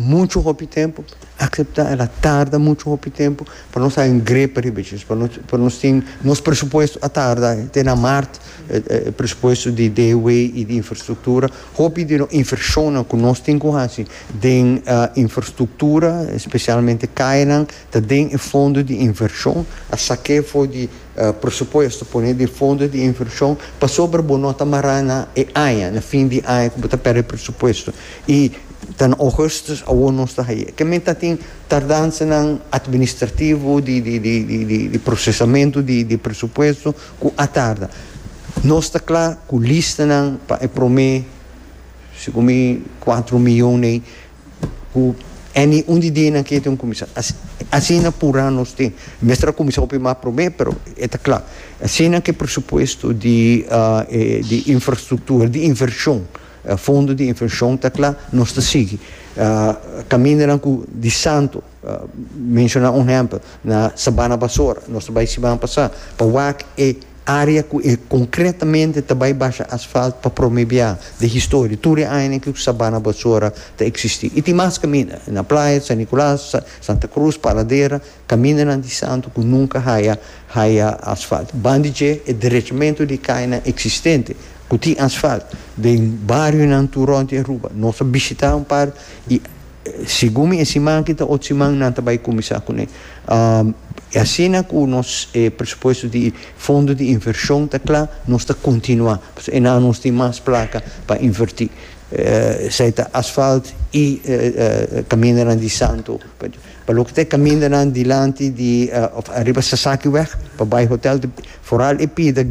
Muchu hopi tempu acepta el a tarda muchu hopi tempu pa nos haña un grepa riba dje pa nos pa nos tin nos presupuesto a tarda te na mart presupuesto di DW y di infrastructura hopi di nos invershonnan cu nos tin cu haci den infrastructura specialmente cayanan ta den e fondo di invershon a sak'e for di Presupuesto pone den fondo di invershon pasobra bo no ta mará na e aña, na fin di aña ku bo ta pèrdè presupuesto i ta na Ougustus awor nos ta hañ'é. Kiamente a tin tardansanan administrativo di di prosesamentu di presupuesto ku a tarda. Nos ta kla ku listanan pa e promé, segun mi, kuatro mion ei, ku any un di dianan ke te un kuminsá. Asina purá nos tin. Mester a kuminsá hopi mas promé, pero e ta kla. Asina ku e presupuesto di di infrastruktura, di invershon, fondo di invershon ta kla, nos ta sigui kamindanan ku di santo. Menshona un hèmpel, na Sabana Basora, nos ta bai siman pasá pa wak e área ku e konkretamente ta bai basha asfalt pa promé bia den historia, tur e añanan ku Sabana Basora ta eksistí. I tin mas kaminda, na Playa, San Nicolas, Santa Cruz, Paradera, kamindanan di Santu ku nunka haya haya asfalt. Ban di dje, e derechamentu di kainan eksistente ku tin asfalt den barionan tur rònt di Aruba, nos a bishitá un par i Segun mi e siman aki ta otro siman nan ta bay cuminsa cune. Y asina cu nos e presupuesto di fondo di inversion ta cla nos ta continua pasobra e nan nos tin mas placa pa inverti. Esai ta asfalt y camindanan di Santo. Pa loke ta e camindanan dilanti di of ariba Sasaki weg pa bay hotel. Foral e pida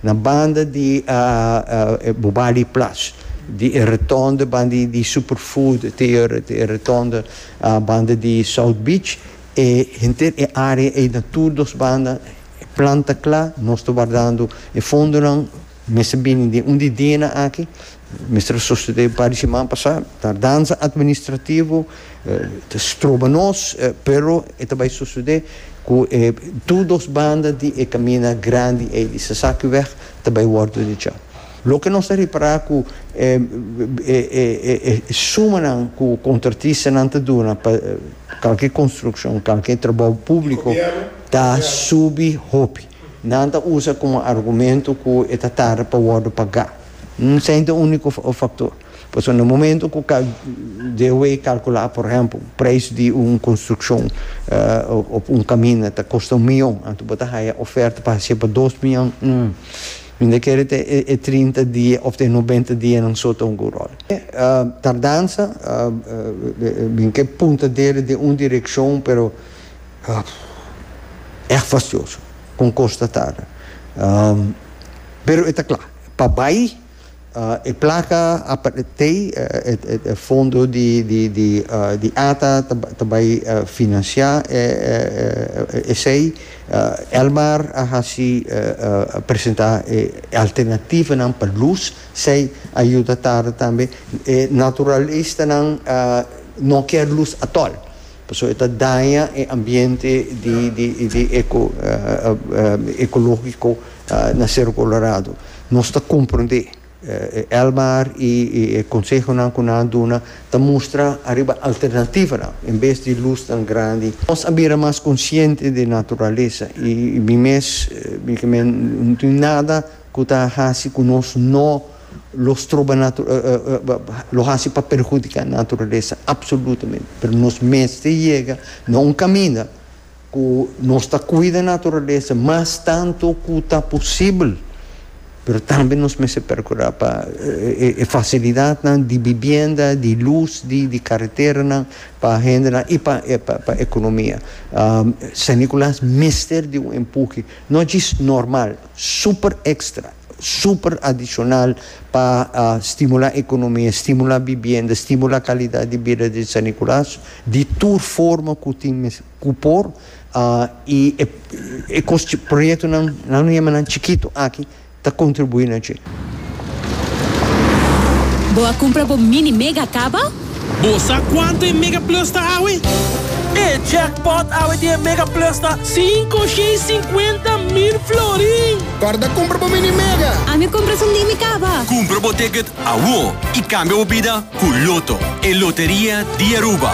na banda di e Bobali Plash, di e retonde banda di Superfood te e retonde banda di South Beach, e henter e area ei na tur dos banda e planta cla, nos ta wardando e fondonan, mester bini den un di dianan aki, Mister Sosthete un par di siman pasá, tardansa administrativo ta stroba nos, pero e ta bai sosode ku e tur dos banda di e kaminda grandi ei di Sasaki wèg ta bai wòrdu dechá. Loke nos ta repará ku e e sumanan ku kontratistanan ta duna pa kalke konstrukshon, kalke trabou públiko ta subi hopi. Nan ta usa komo argumento ku e ta tarda pa wòrdu pagá. Un sènte úniko faktor. Pasobra na momentu ku DOW kalkulá por ehèmpel un preis di un konstrukshon òf un kaminda ta kosta un miyon, anto bo ta haya ofèrta pa hasié pa dos miyon, hm, mi ta kere te e trinta dia òf te e nobenta dianan so ta un good ròl. Tardansa bin ke puntadera den un direkshon, pero èg fastioso kon kos ta tarda, pero e ta kla. Pa bai e placa a tei e fondo di ata ta bai financia esey. Elmar a haci presenta e alternativanan pa luz, sey a yuda tarde tambe. E naturalistanan no kier luz atol. Pasobra e ta daña e ambiente di eco ecologico na Cerro Colorado. Nos ta comprende. Elmar y e consehonan cu nan a duna ta mustra ariba alternativanan en bes di luz tan grandi. Nos a bira mas consciente di naturalesa y mi mes, mi caminda, no tin nada cu ta haci cu nos no. lo stroba lo hasi pa perhudiká naturalesa apsolutamente, pero nos mester yega na un kaminda ku nos ta kuida naturalesa mas tantu ku ta posibel, pero tambe nos mester perkurá pa e fasilidatnan di bibienda, di lus, di di kareteranan pa hendenan i pa pa ekonomia. San Nikolas mester di un empuhe, no djis normal, super ekstra. super adicional pa stimula economia, stimula bibienda, stimula calidad di bida di San Nicolas di tur forma cu tin mes cu por y e cos chi proyectonan nan lo yama nan chikito aki ta contribui na dje. Bo a cumpra bo mini mega caba? Bo sa cuanto e Mega Plus ta awe? E jackpot awe di e Mega Plus ta. Cinco shei cincuenta mil florin! Corda cumpra bo Mini Mega! Ami cumpra su Mini Caba! Cumpra bo ticket awo y cambia bo bida cu Lotto, e loteria di Aruba!